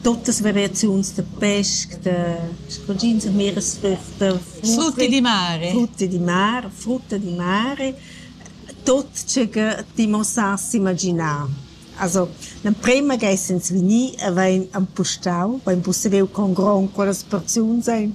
Tuttas variaziuns da pesch, da scochins e miras da frutti di mare. Frutti di mare, frutta di mare, tut tg'e che ti muossassi imaginà. Also l'emprema ch'ei sens vegnì e vain empustau, vain pussediu con gron quellas porziuns ein.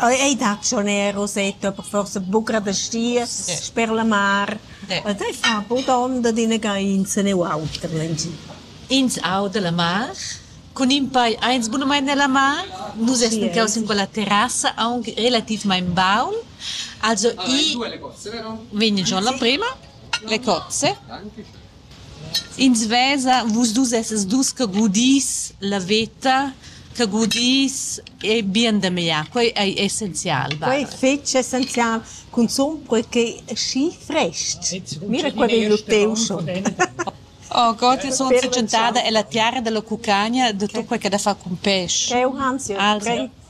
Ei dat schon eir Rosetto, aber forsa buca da Stiers, sper la mar. Ed ei fa bod onda d'inaga insene u auter lengi. Ins auda la mar, cun in pei eins bunamain nella mar. Nus essan caus in quella terrassa aunc relativmaing baul. Also i vegn giò la prema, le cozze. Ins vesa vus dus essas dus che gudis la veta, che gudis e bien da meglier. Quei ei essenzial. Quei è fetg essenzial, cunzun per che schi frest. Mira qua vegn lu teu schon. Oh Gott, io sono tschentada, è la tiara della cucagna, de tutto quel che ha da far con pesce. È un ansia.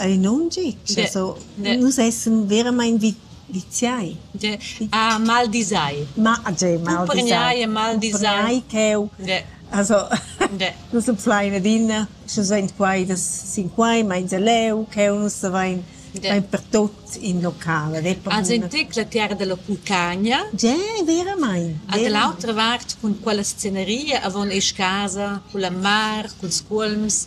ei non gi. Nus essen veramain viziai. Ah, maldisai. Cumprenai e maldisai. Cheu. Nus en plein adina, sche sein quai sin quai, meins leu, cheu nus savein pertot in local. Als en tec la terra della Pulcagna. Ge, veramain. Ad l'autra vart cun quella sceneria avon esch casa, cun la mar, culs cuolms.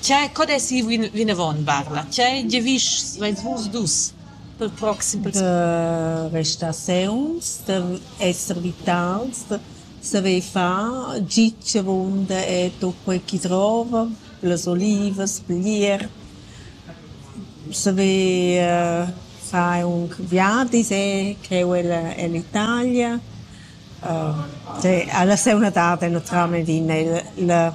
Tgei co dessi vinavon, Barla? Tgei giavischs veis vus dus per proxim? De restaziuns, de esser vitals, de saver far gitg avunda e tut quei chi drova, las olivas, plier, saver far aunc viadis e creu ella ell'Italia. Alla seuna dada naturalmein vegn ei la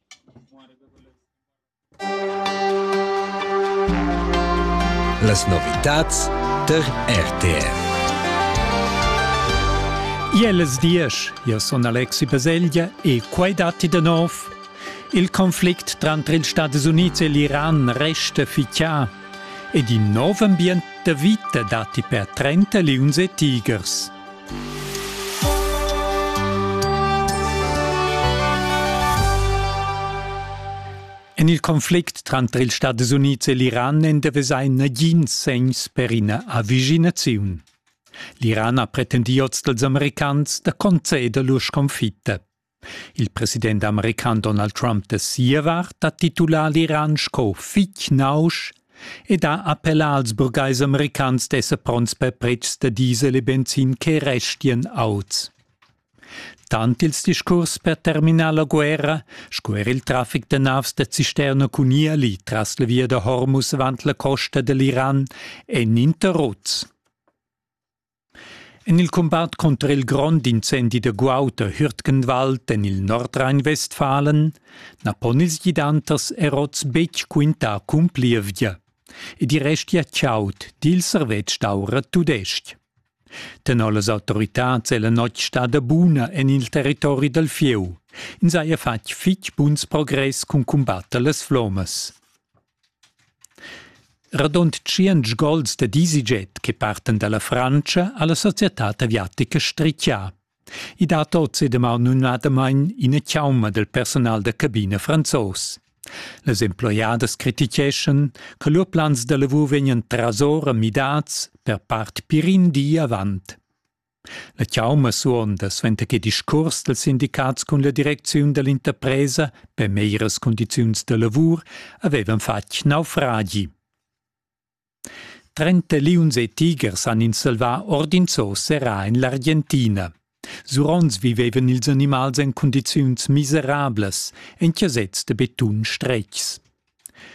Las novitads tar RTR. Iel es diesch, io sun Alexi Baselgia e quai datti da nov. Il conflict tranter ils Stati Units e l'Iran resta fichà ed in nov ambient da vita datti per 30 liuns e tigers. En il conflict tranter ils Stati Unids e l'Iran èn da vesair nagins segns per ina avvicinaziun. L'Iran ha pretendì oz dals Americans da conceder lur sconfitta. Il president american Donald Trump da sia vart ha titulà l'Iran sco fitg nausch ed ha appellà als burgais americans d'esser pronts per pretschs da diesel e benzin che restian auts. Tant ils discurs per terminar la guerra sco er il traffic da navs da cisterna cun ieli tras la via da Hormuz avant la costa dall'Iran èn interruts. En il cumbat cunter il grond incendi da guaud a Hürtgenwald en il Nordrhein-Westfalen na pon ils gidanters er oz betg quintar cun plievgia. Ed i restia chaud, di il servetsch d'aura tudestg. Tenor las autoritads è la notg stada buna en il territori dal fieu. Ins haja fatg fitg buns progress cun cumbatter las flommas. Radund tschient gols da EasyJet che partan dalla Frantscha ha la societad aviatica strichà. I dat oz e damaun numnadamain ina chauma del personal da cabina franzos. Las emploiadas criticheschan che lur plans da lavur vegnan trasora midads per part pir in di avant. La chauma suonda suenter che discuors dals sindicats cun la direcziun dall'interpresa per meglieras cundiziuns da lavur havevan fatg naufragi. Trenta liuns e tigers han ins salvà ord in zoo serrà en l'Argentina. Sur onns vivevan ils animals en cundiziuns miserablas, en chasets da betun stretgs.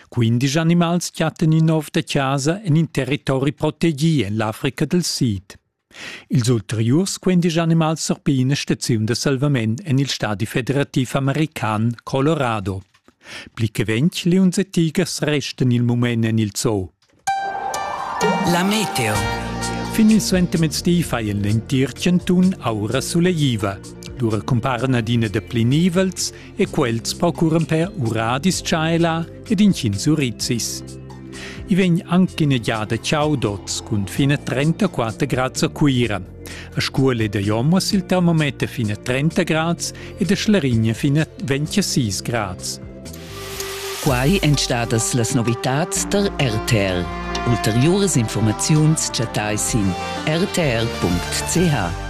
Quindici animals chattan in nov da chasa en in territori protegì en l'Africa dal Sid. Ils ulteriurs quindisch animals surpiglan ina staziun da salvament en il stadi federativ american Colorado. Pli che ventg liuns e tigers restan il mument en il zoo. La meteo. Fin il suentermezdi faien l'entir chantun aura suleiva. Lura cumparan adina da pli nivels e quels procuran per ura dischaila ed incin surizis. I vegn anche in egliada Ciaudots cun fine 34 grads a Cuira. A scuole da Jomos il termometer fine 30 grads ed a Schlarigna fine 26 grads. Quai èn stadas las novitads der RTL. Ulteriuras informaziuns chattai sin rtl.ch.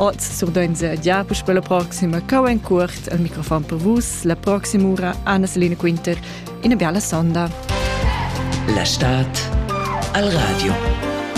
Oz surdainsa gia puspè la proxima cau en cuort al microfon per vus la proxima ura Anna Selina Quinter ina bella sonda. La stad al radio.